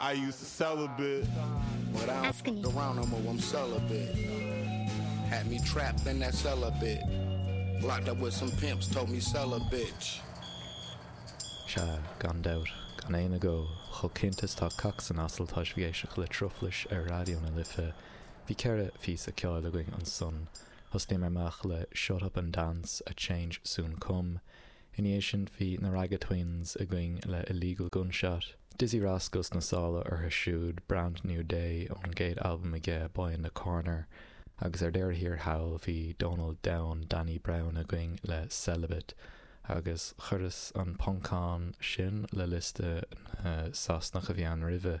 I used to sell a bit, but I don't fuck around no more, I'm celibate. Had me trapped in that cell a bit. Locked up with some pimps, told me sell a bitch. Sea, gan dabht, gan aon agó, chomh cinnte is tá cac san asal tá sibh ag éisteacht le truflais ar Raidió na Life. Bhí ceithre phíosa ceoil againn ansan. Thosnaíomar amach le Shut Up and Dance, A Change Soon Come, Ina dhiaidh sin bhí na Ragga Twins againn le Illegal Gunshot, Dizzee Rascal sna sála orthu siúd, Brand New Day ón gcéad albam aige, Boy in da Corner, agus ar deireadh thiar thall bhí Dónall Donn, Danny Brown againn le Celibate, agus chuireas an poncán sin le liosta na Sasanach a bhí ann roimhe.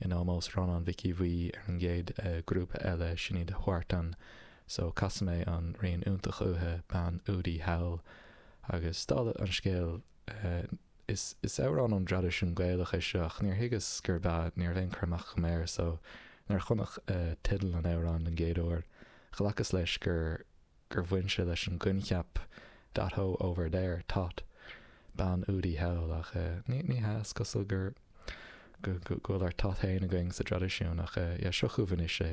In ómós Rónáin Mhic Aodha Bhuí ar an gcéad grúpa eile, sin iad Huartan, so casfaidh mé an rian iontach uathu, Bean Údaí Thall. Agus dála an scéil, is is amhrán ón dtraidisiún Gaelach é seo ach níor thuigeas gurb ea, ní raibh aon chur amach agam air, so nuair a chonac teideal an amhráin don gcéad uair, ghlacas leis gur. gur bhain sé leis an gcoincheap that hoe over there, thot. Bean údaí thall, ach ní hea, is cosúil gur go bhfuil ár thot féin againn sa dtraidisiún, ach yeah, seo chugaibh anois é.